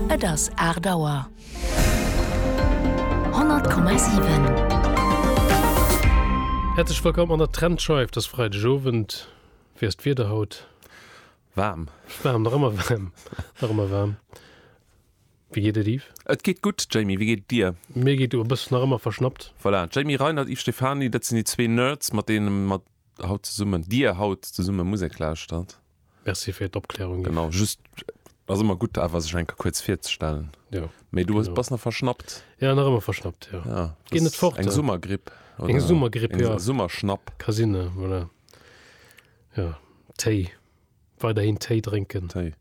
Et ass 8 Auer. 100,7. Häerzlech wëllkomm an der Trendscheif dës Freideg Owend. Wéi ass d'Wieder haut? Waarm. Waarm, nach ëmmer waarm. Nach ëmmer waarm. Wéi geet et, Yves? Et geet gutt, Jamie. Wéi geet et dir? Mir geet gutt. E bëssen nach ëmmer verschnappt. Voilà, Jamie Reinert, Yves Stephany, dat sinn déi zwee Nerds, mat deene mer haut zesummen, Dir haut zesumme Musek lauschtert. Merci fir d'Opklärung, Yves. Genau, just, ass ëmmer gutt awer sech eng Kéier kuerz virzestellen. Jo. Mee du genau. bass nach verschnappt? Ja, nach ëmmer verschnappt, jo. Ja, Ginn net fort. Eng Summergripp. Eng Summergripp, jo. Eng Summerschnapp. Ka sinn, ja, voilà. Jo, Téi. Weiderhin Téi drénken. Téi.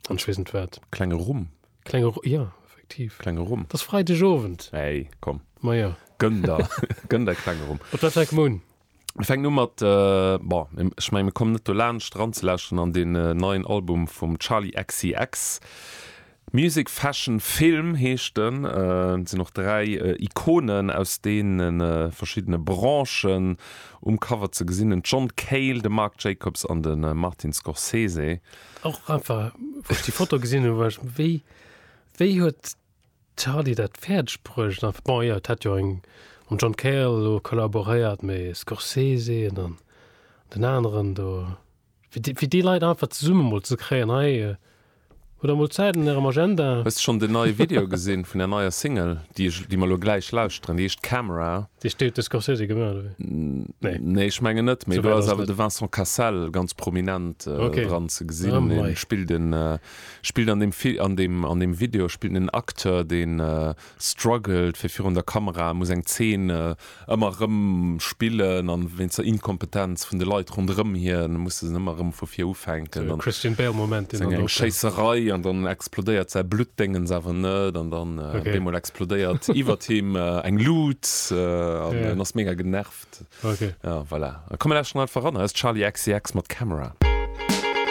An ech weess net wat. Klenge Rhum. Klenge Rhum, ja, effektiv. Klenge Rhum. T'ass Freidegowend. Hey, komm. Majo. Gönn der, gönn der klenge Rhum. Op dat Weg, Moon. Mir fänken u mat, bon, ech mengen, mir kommen net dolaanscht eranzelauschteren an deen neien Album vum Charli XCX. Music Fashion Film heescht en. Et sinn och dräi Ikonen aus deene verschiddene Branchen um Cover ze gesinn, den John Cale, de Marc Jacobs an de Martin Scorsese. Och einfach, wou ech déi Foto gesinn hunn, war ech, Wéi, wéi huet D'Hardy dat fäerdeg bruecht an bon jo et hätt jo eng mam John Cale elo kollaboréiert mee Scorsese an dann den aneren do fir déi fir déi Leit einfach zesumme emol ze kréien hei hutt der mol Zäit an ärem Agenda. Hues de schonn den neie Video gesinn vun der neier Single, déi ech déi mer elo gläich lauschteren? Déi heescht Camera. Déi huet de Scorsese gemaach oder wéi? Nee. Nee, ech mengen net, mee do ass awer de Vincent Cassel ganz prominent dran ze gesinn, hie spillt en. Spillt an dem an dem an dem Video spillt en Acteur deen struggelt fir virun der Kamera, muss eng Zeen ëmmer erëm spillen an wéinst der Inkompetenz vun de Leit ronderëm hien muss en ëmmer erëm vu vir ufänken an ass eng eng Schéisserei an dann explodéiert säi Bluttdéngens awer net an dann op eemol explodéiert iwwert him eng Lut an en ass mega genervt. Voilà, komm mir lauschteren einfach eran, hei ass Charli XCX mat Camera.